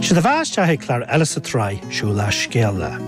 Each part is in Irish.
Sé do bheatha isteach ag clár eile sa tsraith Siúlach Scéalach.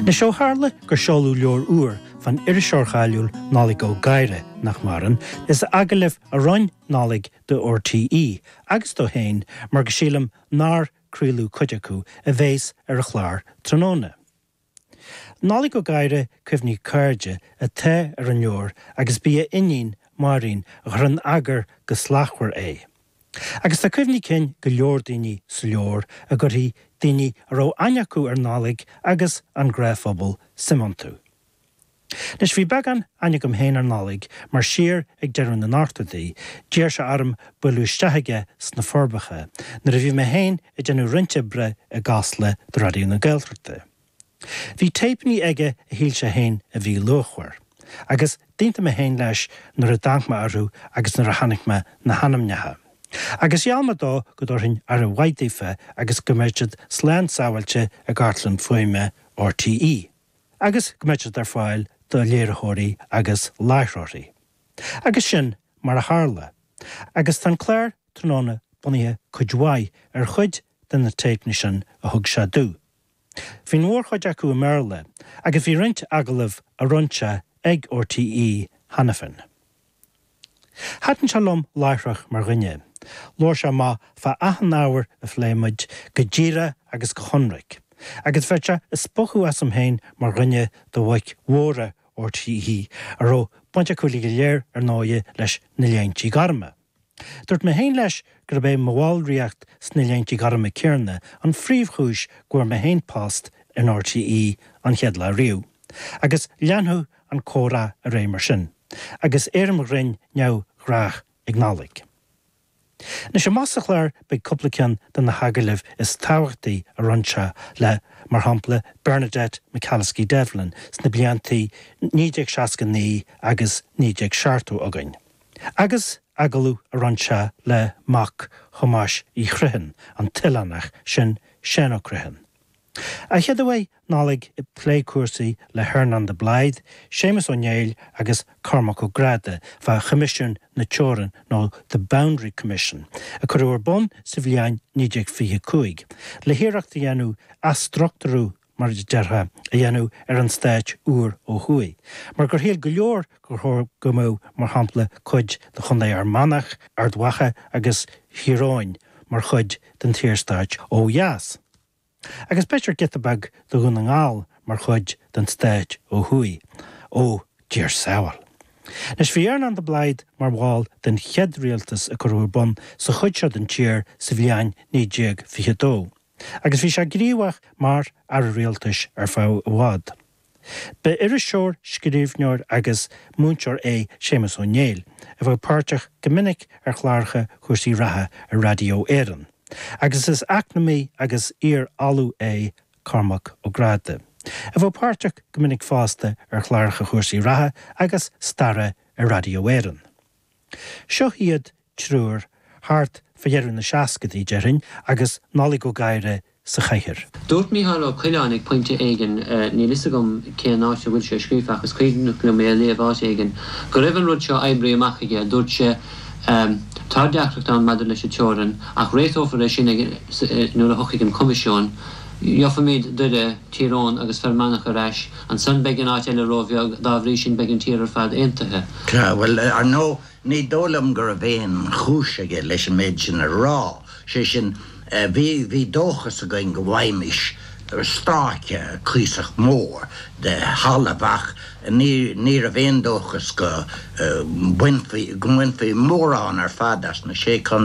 Anois ó tharla gur seoladh leabhar úr fán iriseoir cháiliúil Nollaig Ó Gadhra, nach maireann, is agallaimh a rinne Nollaig do RTÉ agus dó féin mar go sílim nár craoladh cuid acu a bhéas ar an chlár tráthnóna. Nollaig Ó Gadhra Cuimhní Cairde atá ar an leabhar agus b'í a iníon, Máirín, a chuir in eagar go slachtmhar é. Agus tá cuimhní cinn go leor daoine sa leabhar a gcuirfidh daoine a raibh aithne acu ar Nollaig agus an gnáthphobal suim iontu. Anois, bhí beagán aithne agam féin ar Nollaig mar siar ag deireadh na n-ochtóidí, d'iarr sé orm buaileadh isteach chuige sna Forbacha nuair a bhí mé féin ag déanamh roinnt oibre i gCasla do Raidió na Gaeltachta. Bhí téipeannaí aige a shíl sé féin a bhí luachmhar, agus d'aontaigh mé féin leis nuair a d'amharc mé orthu agus nuair a chonaic mé na hainmneacha. Agus gheall mé dó go dtabharfainn aire mhaith daofa agus go mbeadh siad slán sábháilte i gCartlann Fuaime RTÉ. agus go mbeadh siad ar fáil do léiritheoirí agus láithreoirí. Agus sin mar a tharla, agus tá an clár tráthnóna bunaithe cuid mhaith ar chuid de na téipeanna sin a thug sé domh. Bhí an mhórchuid acu i mBéarla, agus bhí roinnt agallamh a rinne sé ag RTÉ cheana féin. Thaitin sé liom láithreach mar dhuine. Labhair sé amach fá achan ábhar a phléigh muid, go díreach agus go hionraic, agus bheadh sé ag spochadh asam féin mar dhuine de bhoic mhóra RTÉ a raibh baint acu uilig go léir, ar ndóighe, leis na Léintí Gorma. Dúirt mé féin leis gurb é mo bhallraíocht sna Léinte Gorma céanna an phríomhchúis go bhfuair mé féin post in RTÉ an chéad lá riamh, agus leanfadh an comhrá ar aghaidh mar sin, agus éirim ghrinn neamhghnách ag Nollaig. Anois, amach sa chlár beidh cúpla ceann de na hagallaimh is tábhachtaí a rinne sé le, mar shampla, Bernadette McAliskey-Devlin sna blianta 1969 agus 1970 againn. Agus agallamh a rinne sé le mac Thomáis Uí Chriomhthain, an t-oileánach sin Seán Ó Criomhthain. A chéaduair beidh Nollaig ag plé cúrsaí le hEarnán de Blaghd, Séamus Ó Néill agus Cormac Ó Gráda fá Choimisiún na Teorann nó The Boundary Commission, a cuireadh ar bun sa bhliain 1925, le hiarracht a dhéanamh athstruchtúrú mar a déarfá, a dhéanamh ar an stát úr ó thuaidh, mar gur shíl go leor gur chóir go mbeadh, mar shampla, cuid de Chontae Fhear Manach, Ard Mhacha agus Thír Eoghain mar chuid den tSaorstát ó dheas, agus b'fhéidir giota beag de Dhún na nGall mar chuid den stát ó thuaidh, ó Dia ár sábháil. Anois, bhí Earnán de Blaghd mar bhall den chéad rialtas a cuireadh ar bun sa chuid seo den tír sa bhliain 1922, Agus bhí sé gníomhach mar Aire Rialtais ar feadh i bhfad. Ba iriseoir, scríbhneoir agus múinteoir é Séamus Ó Néill, a bheadh páirteach go minic ar chláracha cúrsaí reatha ar Raidió Éireann, agus is eacnamaí agus iar-Ollamh é Cormac Ó Gráda, a bheadh páirteach go minic fosta ar chláracha chúrsaí reatha agus staire ar Raidió Éireann. Seo iad triúr, thart fá dheireadh na seascaidí, déarfainn, agus Nollaig Ó Gadhra sa chathaoir. Dúirt Micheál Ó Coileáin ag pointe éigin, níl 'fhios agam cén áit a bhfuil sé scríofa ach is cuimhneach liom é a léamh áit éigin, go raibh an rud seo oibrithe amach aige, dúirt sé Tá deacracht ann maidir leis an teorainn, ach réiteofar é sin nuair a thiocfaidh an Coimisiún, gheobhaimid Doire, Tír Eoghan agus Fear Manach ar ais, ansan beidh an áit eile róbheag, dá bhrí sin beidh an tír ar fad aontaithe. Bhuel, ar ndóigh, Ní dóigh liom go raibh aon chúis aige leis an méid sin a rá, sé sin, bhí, bhí dóchas againn go bhfaighimis stráice cuíosach mór de thalamh ach ní, ní raibh aon dóchas go mbainfí, go mbainfí mórán ar fad as na Sé Chontae.